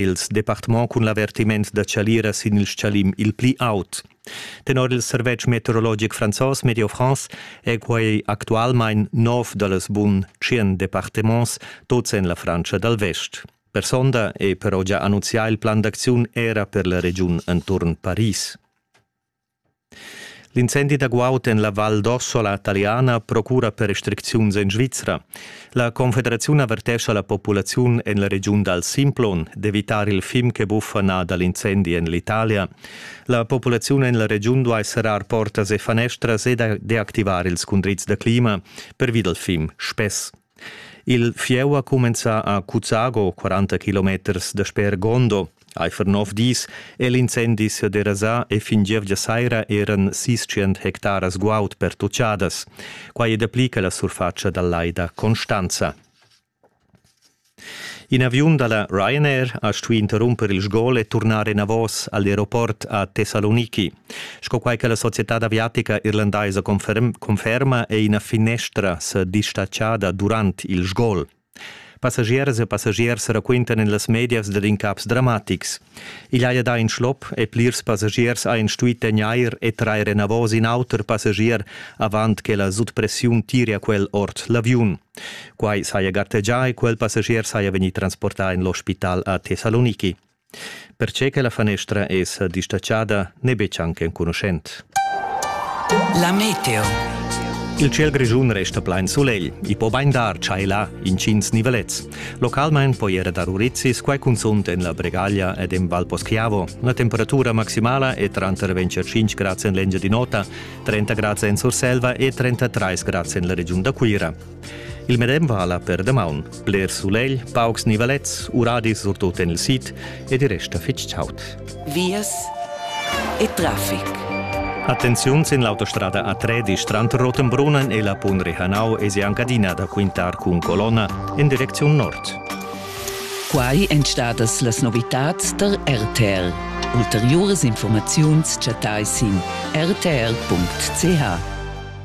ils departements cun l'avertiment da chalira sin il stgalim il pli aut. Tenor il servetsch meteorologic franzos Medio France è quai actualmain nov da las bun tschien departements, tots en la Frantscha dal Vest. Per sonda è però già annunzià il plan d'acziun era per la regiun enturn Paris. L'incendi da guaud en la Val d'Ossola taliana procura per restricziuns en Svizra. La Confederaziun avertescha la populaziun en la regiun dal Simplon d'evitar il fim che buffa nà da l'incendi en l'Italia. La populaziun en la regiun duai serrar portas e fanestras e deactivar ils cundrids da clima pervi dal fim spess. Il fieu ha cumenzà a Cuzago, 40 kilometers dasper Gondo. Eifer nov dis è l'incendi se derasà e fin gievgia saira eran sis tschient hectaras guaud pertutgadas. Quai è dapli che la surfatscha dal lai da Constanza. In aviun da la Ryanair ha stuì interrumper il sgol e turnar enavos a l'aeroport a Thessaloniki. Sco quai che la societad aviatica irlandaisa conferma è ina finestra sa distatschada durant il sgol. Passagiers e passagiers raquintan en las medias dad incaps dramatics. Igl haja dà in schlop e plirs passagiers hajan stuì tegnair e trair enavos in auter passagier avant che la sutpressiun tiria quel ord l'aviun. Quai saja gartegià e quel passagier saja vegnì transportà en l'ospital a Thessaloniki. Perche che la fanestra es distatschada n'è betg anc enconuschent. La meteo. Il ciel grischun resta plain sulegl. I po bain dar chai là intgins nivelets. Localmain po era dar urizis, quai cunzunt en la Bregaglia ed en Valposchiavo. Una temperatura maximala è tranter 25 grads en l'Engiadin'Ota, 30 grads en Surselva e 33 grads en la regiun da Cuira. Il medem vala per damaun. Bler sulegl, paucs nivalets, uradis surtut en il sid ed i resta fitg chaud. Vias e traffic. Attenziun sin l'autostrada A3 Strand Rotenbrunnen e la Pun Rihanau e anche adina da quintar cun colonna in direcziun nord. Quai èn stadas las novitads der RTL. Ulteriuras informaziuns chattai sin rtl.ch.